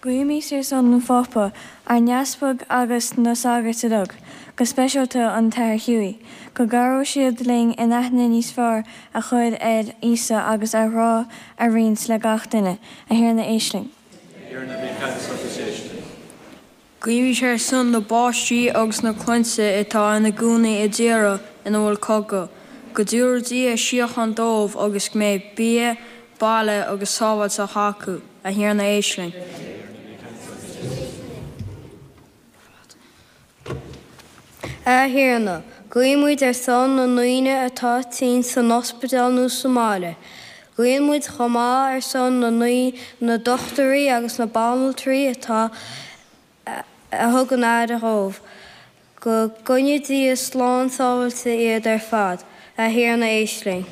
Guímis ar son an Phápa, ár nEaspag agus na sagairt uilig, go speisialta an tAthair Hughie, go gcabhróidh siad linn aithne níos fearr a chur ar Íosa agus a ghrá a roinnt le gach duine. A Thiarna, éist linn. A Thiarna, bí ceansa agus éist linn. Guímis ar son na bpáistí agus na clainne atá ina gcónaí i dtíortha ina bhfuil cogadh, go dtabharfaidh Dia síocháin dóibh agus go mbeidh bia, baile agus sábháilteacht acu, a Thiarna, éist linn. A Thiarna, guímid ar son na ndaoine atá tinn san ospidéal nó sa mbaile. Guíonn muid chomh maith ar son na na dochtúirí agus na banaltraí atá, a thugann aire dhóibh. Go gcoinne Dia slán sábhailte iad ar fad. A Thiarna, éist linn.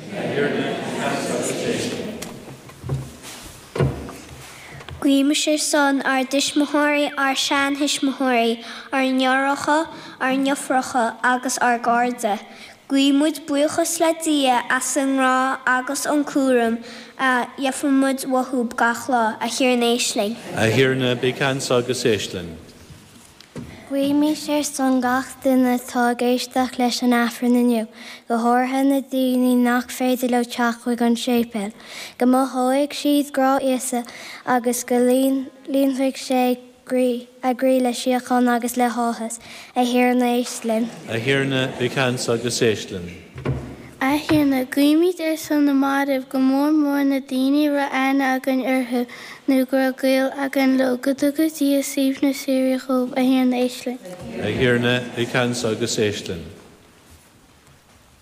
Guímis ar son ár dtuismitheoirí, ár seanthuismitheoirí, ár ndeartháireacha, ár ndeirfiúracha agus ár gcairde. Guímid buíochas le Dia as an ngrá agus an cúram a gheibhimid uathu gach lá. A Thiarna, éist linn. A Thiarna, bí ceansa agus éist linn. Guímis ar son gach duine atá ag éisteacht leis an Aifreann inniu, go háirithe na daoine nach féidir leo teacht chuig an séipéal, go mothóidh siad grá Íosa agus go lí líonfaidh sé a gcroí le síocháin agus le háthas. A Thiarna, éist linn. A Thiarna, bí ceansa agus éist linn. A Thiarna, guímid ar son na mairbh go mór mór na daoine a raibh aithne againn orthu nó go raibh gaol againn leo, go dtuga Dia suaimhneas síoraí dhóibh, a Thiarna, éist linn. A Thiarna, bí ceansa agus éist linn.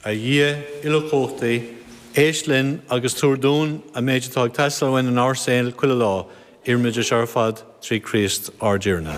A Dhia uilechumhachtaigh, éist linn agus tabhair dúinn an méid atá ag teastáil uainn in ár saol chuile lá, iarraimid é seo ar fad trí Chríost ár dTiarna.